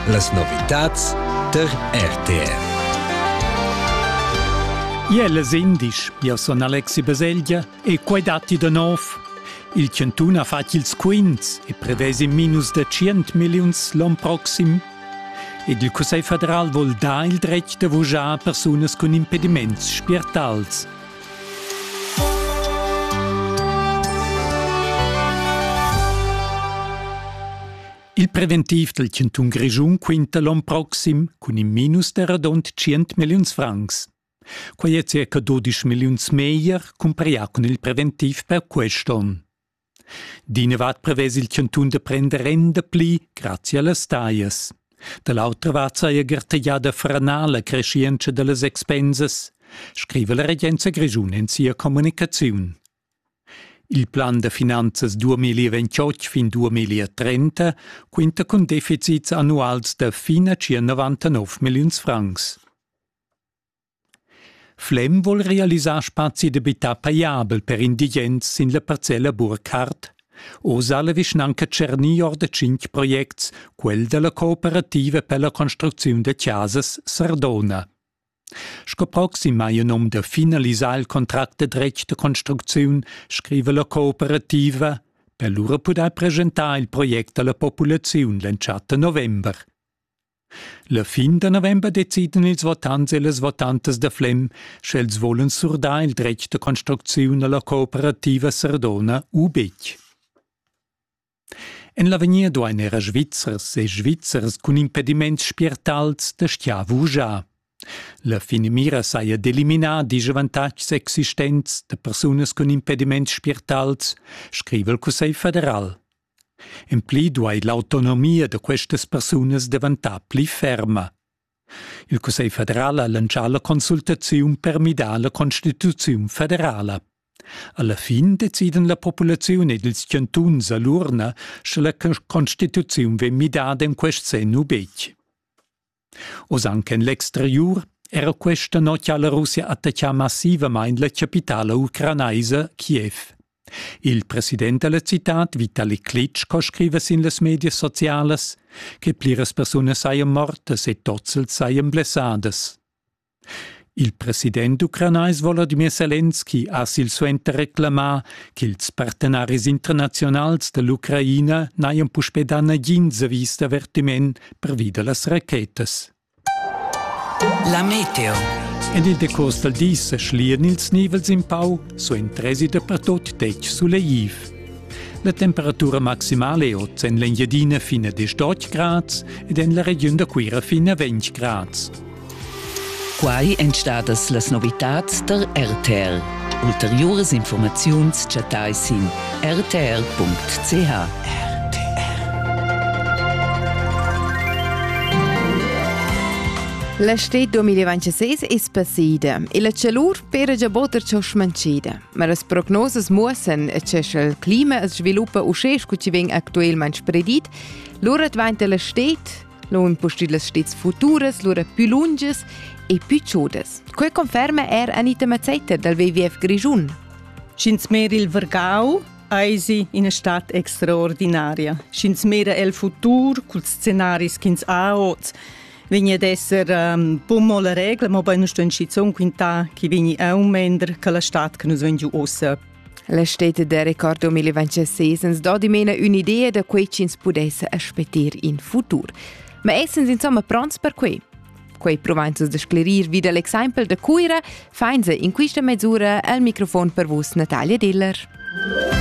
Las novitads tar RTR. Iel es indisch, io sun Alexi Baselgia e quai datti da nov. Il Chantun ha fat ils quints e prevesi minus da 100 milliuns l'on proxim. Ed il Cussegl federal vol dar il dretg da vujar persunas cun impediments spiertals Il preventiv dal chantun Grischun quinta l'on proxim cun in minus da radund 100 milliuns francs. Quai è circa 12 milliuns meglier cumparà cun il preventiv per quest'on. D'inavart prevess il chantun da prender renda pli grazia las taglias. Da l'autra vart saja gartegiada franar la creschientscha da las expensas, scriva la regenza grischun en sia communicaziun. Il plan da finanzas 2028 fin 2030 quinta cun deficits annuals da fin a circa 99 milliuns francs. Flem vol realisar spazi d'abitar pajabel per indigens sin la parcella Burkhardt. Oz ha la vischnanca tschernì or da tschintg projects, quel da la cooperativa per la construcziun da chasas Sardona. Sco proxim hai il nom da finalisar il contract da dretg da construcziun, scriva la cooperativa. Per lura pudair presentar il project a la populaziun l'entschatta november. La fin da november decidan ils votants e las votantas da Flem, sch'els volan surdar il dretg da construcziun alla cooperativa Sardona u betg. En l'avegnir duain era Svizzers e Svizzers cun impediments spiertals da stiar vugiar. La finamira saja d'eliminar disch avantatgs existents da persunas cun impediments spiertals, scriva il Cussegl federal. En pli duai l'autonomia da questas persunas daventar pli ferma. Il Cussegl federal ha lantschà la consultaziun per midar la constituziun federala. Alla fin deciden la populaziun ed ils chantuns a l'urna, sche la constituziun vegn midada en quest senn u betg. Oz anc en l'exteriur era questa notg ha la Russia attaccà massivamain la chapitala ucranaisa Kiev. Il president della citad, Vitali Klitschko, scriva sin las medias socialas che pliras persunas sajan mortas e tozzels sajan blessadas. Il president ucranais Volodymyr Selenski ha silsuenter reclamà ch'ils partenaris internaziunals da l'Ucraina n'hajan puspè dà nagins avis d'avertiment pervi da las rachetas. La meteo. En il decost dal di sa schlian ils nivels in pau, suentresi dapertut detg suleiv. La temperatura maximale è oz en l'Engiadina fin a 18 grads ed en la regiun da Cuira fin a 20 grads. Quai èn stadas las novitads tar RTR. Ulteriuras informaziuns chattai sin rtr.ch. L'estate 2026 es passida e la chalur pera già botter ciò smancida. Ma las prognosas muossan che sche il clima sviluppa uschè sco ci vegn actualmente spredit, lura dvainta l'estate Lo impustit las stets futuras lura più lungas e più ciudas. Quel conferma er Anita Mazzeiter dal WWF Grischun. Sch'ins mera il Vergau, eisi ina stat extraordinaria. Sch'ins mera el futur cul scenaris ch'ins ha oz, vegni ad esser um, bumo la regla, ma poi non sto in schizun quintà chi vegni aumender che la stat che nus vegn giu ossa La steta da record 2026 ens do dimena ün'idea da quei ch'ins pudesse aspetter in futur. Ma essens insomma pronts per quei? Quei provanzas da sclerir vid l'exempel da Cuira fainsa in quista mesura al microfon per vus Natalia Diller.